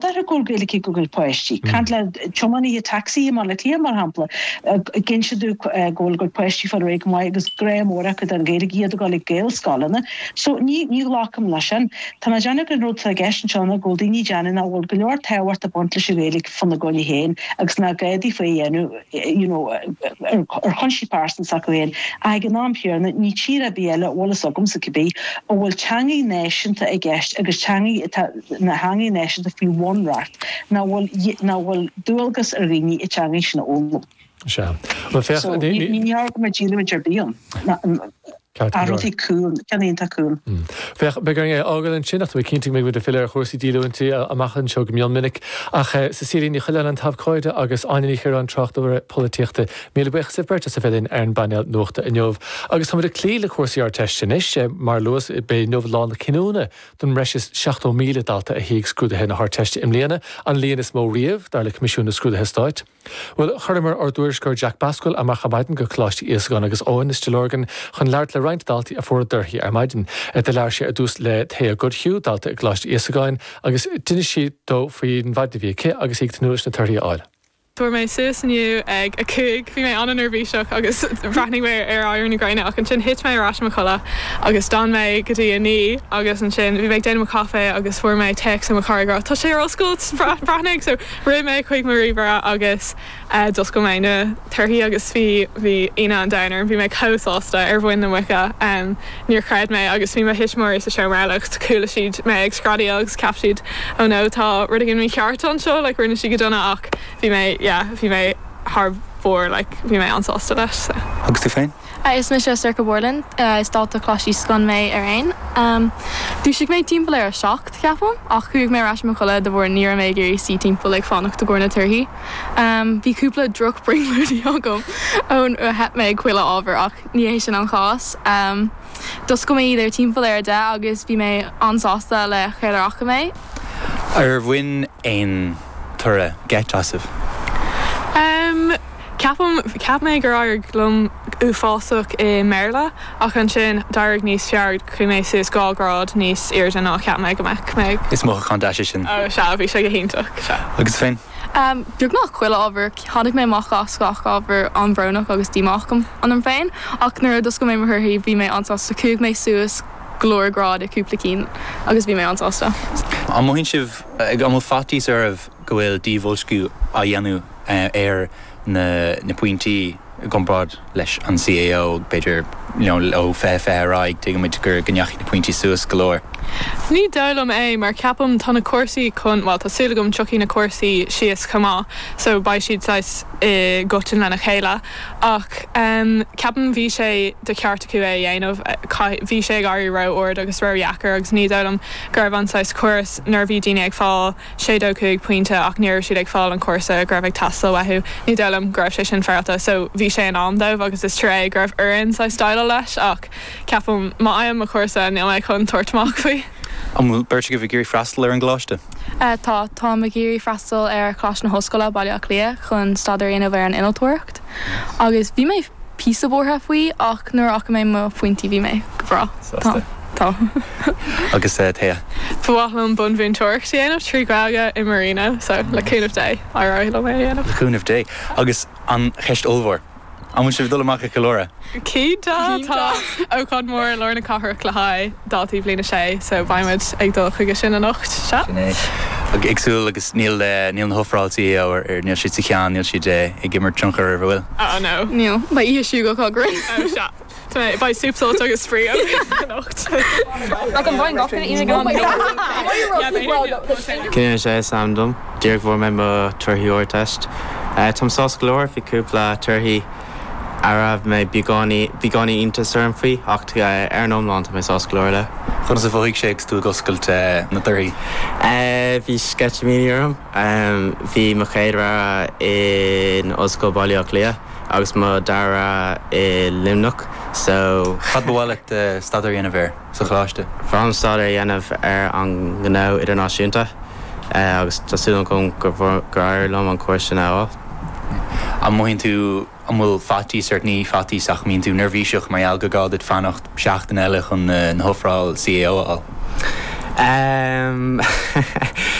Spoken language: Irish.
Tá go leor Gaeilge go bhfuil páistí. Caint le tiománaithe tacsaí i mBaile Átha Cliath, mar shampla, ag insint dúinn go bhfuil a gcuid páistí ag fáil ar aghaidh go maith agus grá mór acu don Ghaeilge, iad ag dul ag Gaelscoileanna. So, ní ghlacaim leis sin. Tá mé ag déanamh go an rud atá i gceist anseo ná go bhfuil daoine ag déanamh nach bhfuil go leor tábhacht ag baint leis an Ghaeilge fána gcoinne féin agus nach gá daofa í a dhéanamh, you know, ar chúinsí pearsanta s'acu féin ach ag an am chéanna, níl tír ar bith eile, go bhfuil a fhios agamsa cibé, a bhfuil teangaidh náisiúnta i gceist agus teangaidh atá. ina teangaidh náisiúnta faoi bhunreacht nach bhfuil dualgas ar dhaoine an teanga sin a fhoghlaim. So, níor cheart go mbeadh díolúine ar bith ann. Athróidh cúl, ceann iontach cúng. Féach, beidh orainn é a fhágáil ansin, ach tá mé cinnte go mbeidh muid ag filleadh ar chúrsaí díolúintí amach anseo go mion minic. Ach is í Saoirín Ní Choileáin an t-abhcóide agus Áine Ní Chiaráin tráchtaire polaitíochta. Míle buíochas libh beirt as a bheith linn ar an bpainéal nuachta inniu. Agus táimid ag cloí le cúrsaí Ardteiste anois. Mar a luas, b'é inniu lá na cinniúna. don bhreis is 70,000 dalta a shuigh scrúduithe na hArdteiste i mbliana, an líon is mó riamh, dar le Coimisiún na Scrúduithe Stáit. Bhuel, chuireamar ár dtuairisceoir Jack Basquel amach ar maidin go Coláiste Íosagáin agus Eoin i Stigh Lorgan chun labhairt le roinnt daltaí a fuair a dtorthaí ar maidin. Do labhair sé ar dtús le Thea Goodhue, dalta i gColáiste Íosagáin, agus d'inis sí dó faoin mhaidin a bhí aici agus í ag tnúth leis na torthaí a fháil. Fuair mé suas inniu ag a cúig. Bhí mé an-neirbhíseach agus bhreathnaigh mé ar éirí na gréine ach ansin thit mé ar ais i mo chodladh agus d'fhan mé go dtí a naoi agus ansin bhí mé ag déanamh mo chaife agus fuair mé téacs ó mo chara ag rá tá sé ar oscailt. Breathnaigh. So rith mé chuig mo ríomhaire agus d'oscail mé na torthaí agus bhí bhí ionadh an domhain orm. Bhí mé chomh sásta ar mhuin na muice. Níor chreid mé agus bhí mo thuismitheoirí sa seomra eile ach chuala siad mé ag screadaíl agus cheap siad oh no tá rud éigin mícheart anseo, like rinne sí go dona ach bhí mé yeah bhí mé thar barr like bhí mé an-sásta leis so. Agus tú féin? Is mise Sorcha Borland. Is dalta Coláiste Íosagáin mé araon. Dhúisigh mé timpeall ar a seacht, cheapaim, ach chuaigh mé ar ais i mo chodladh de bharr ní raibh mé ag iarraidh suí timpeall ag fanacht i gcomhair na torthaí. Bhí cúpla drochbrionglóidí agam inar theip mé ag chuile ábhar ach. Ní hé sin an chás. D'oscail mé iad ar timpeall ar a deich agus bhí mé an-sásta le céard a fhaca mé. Ar bhain aon toradh geit asaibh? Ceapaim. Cheap mé gur éirigh liom uafásach i mBéarla ach ansin d'éirigh níos fearr. Chuaigh mé suas dhá ghrád níos airde ná a cheap mé go mbeadh mé. Is mothúchán deas é sin. Sea, bhí sé go hiontach. Sea. Agus tú féin? Beagnach chuile ábhar. Tháinig mé amach as gach ábhar an-bhrónach agus díomách ionam féin, ach nuair a d'oscail mé mo thorthaí, bhí mé an-sásta. Chuaigh mé suas go leor grád i gcúpla cinn agus bhí mé an-sásta. An mothaíonn sibh, an bhfuil faitíos oraibh go bhfuil díbhoilsciú á dhéanamh ar. na na pointí i gcomparáid leis an CAO, b'fhéidir, you know, ó fiche fiche ar aghaidh, tuigimid gur go ndeachaigh na pointí suas go leor. Ní dóigh liom é mar ceapaim tá na cúrsaí chun, bhuel, tá súil agam tiocfaidh na cúrsaí síos chomh maith, so beidh siad saghas i gcoitinne lena chéile ach ehm ceapaim bhí sé de cheart acu é a dhéanamh, chaith, bhí sé ag éirí ró-ard agus ródheacair agus ní dóigh liom go raibh an saghas córas nuair a bhí daoine ag fáil sé dó cúig pointe ach ní raibh siad ag fáil an cúrsa go raibh ag teastáil uathu. Ní dóigh liom go raibh sé sin féaráilte so bhí sé in am dóibh agus is trua é go raibh orainn saghas déileáil leis ach ceapaim má fhaighim mo chúrsa níl mé chun tabhairt amach faoi. An bhfuil beirt agaibh ag iarraidh freastal ar an gcoláiste? Tá. Táim ag iarraidh freastal ar Choláiste na hOllscoile, Baile Átha Cliath chun staidéar a dhéanamh ar an innealtóireacht. Acht agus bhí mé píosa buartha faoi ach nuair a chonaic mé mo phointí bhí mé go bhreá. Tá. Tá. Agus uh, Thea? Ba mhaith liom bunmhúinteoireacht a dhéanamh trí Gaeilge i Marino, so le cúnamh Dé beidh mé á dhéanamh. Le cúnamh Dé. Agus an cheist ollmhór. An bhfuil sibh dul amach ag ceiliúradh? Cinnte tá ócáid mór i lár na cathrach le haghaidh daltaí bhliain a sé so beidh muid ag dul chuige sin anocht, sea? Sin é. Ag súil agus níl na hofrálacha a fhor, níl siad sa cheann, níl siad ag imirt tionchair ar, an bhfuil? Oh no. Níl. Beidh oíche siúil go grinn. Oh sea. Beidh sult sult agus spraoi anocht. Ach an bhfaigheann gach duine ionad gan bicycle? Cinnte is é is ainm dom. Díreach bhfuair mé mo thorthaí Ardteist. Táim sásta go leor, bhí cúpla torthaí. a raibh mé beagáinín ionadh orm faoi, ach ar an iomlán tá mé sásta go leor leo. Conas a mhothaigh sé agus tú ag oscailt na dtorthaí? Bhí sceitimíní orm. Bhí mo chéad rogha in Ollscoil Bhaile Átha Cliath agus mo dara rogha i Luimneach so. Cad ba mhaith leat staidéar a dhéanamh ar? sa Choláiste. Ba bhreá liom staidéar a dhéanamh ar an ngnó idirnáisiúnta agus tá súil agam gur éirigh liom an cúrsa sin a fháil. An mothaíonn tú an bhfuil faitíos ort? Ní faitíos ach an mbíonn tú neirbhíseach mar gheall gur gá duit fanacht seachtain eile chun na hofráil CAO a fháil?